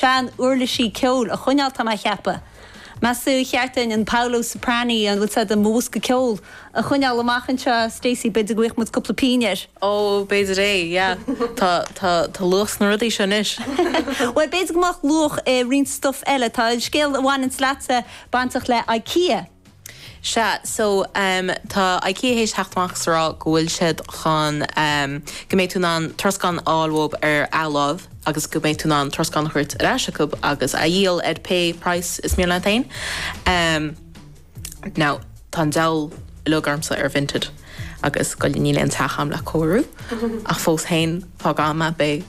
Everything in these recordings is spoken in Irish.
Sean uirlisí ceoil a choinneáil, tá mé a cheapadh. Meas tú ar cheart dúinn an Paolo Soprani, an bhfuil a fhios agat do bhosca ceoil, a choinneáil amach anseo? Stacey, b'fhéidir go bhfaigheadh muid cúpla pínn air. Ó, b'fhéidir é, yeah. Tá, tá, tá luach sna rudaí seo anois. Bhuel, b'fhéidir go mbeadh luach i roinnt stuff eile. Tá an scéal a bhaineanns leatsa bainteach le Ikea. Sea, so, em, tá IKEA théis theacht amach is a rá go bhfuil siad chun, em, go mbeidh tú in ann troscán a fháil uathub ar athláimh agus go mbeidh tú in ann troscán a thabhairt ar ais acub agus a dhíol ar pé price is mian leat féin. Em, now, tá an diabhal uilig ormsa ar Vinted agus go, níl aon teach agam le cóiriú ach fós féin, fógróidh mé, em, beidh,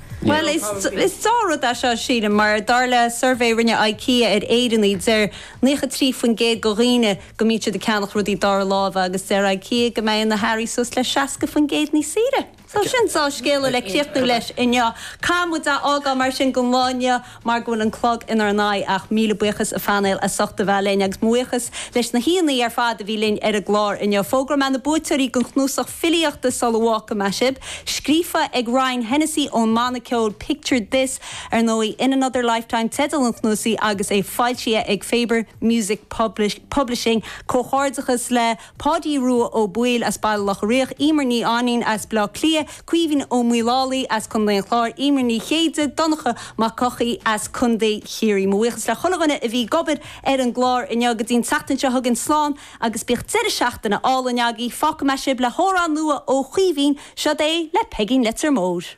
Bhuel, is dea rud é seo, sílim, mar dar le suirbhé a rinne Ikea ar Éireannaigh, deir naocha trí faoin gcéad de dhaoine go mbíonn siad ag ceannach rudaí dara láimhe agus deir Ikea go mbeidh na hearraí suas le seasca faoin gcéad níos saoire. So sin dea-scéala le críochnú leis inniu. Caithfidh muid a fhágáil mar sin don lá inniu. mar go bhfuil an clog inár n-aghaidh ach míle buíochas a phainéal as ucht a bheith linn agus mo bhuíochas leis na haíonna ar fad a bhí linn ar an gclár inniu. Fógróidh mé na buaiteoirí den chnuasach filíochta sula bhfágfaidh mé sibh, scríofa ag Ryan Hennessy ón mbanna ceoil Picture This, ar ndóigh. In Another Lifetime teideal an chnuasaigh agus é foilsithe ag Faber Music Publishing. Comhghairdeachas le. Páidí Rua Ó Baoill as Baile Locha Riach, Emer Ní Ainín as Baile Átha Cliath, Caoimhín Ó Maolalaí as Co. an Chláir, Emer Ní Chéide, Donncha Mac Eochaidh as Co. Chiarraí. Mo bhuíochas le chuile dhuine a bhí ag obair ar an gclár inniu. Go dtí an tseachtain seo chugainn, slán agus bíodh deireadh seachtaine álainn agaibh. Fágfaidh mé sibh le hamhrán nua ó Chaoimhín. Seod é le Peigín Leitir Móir.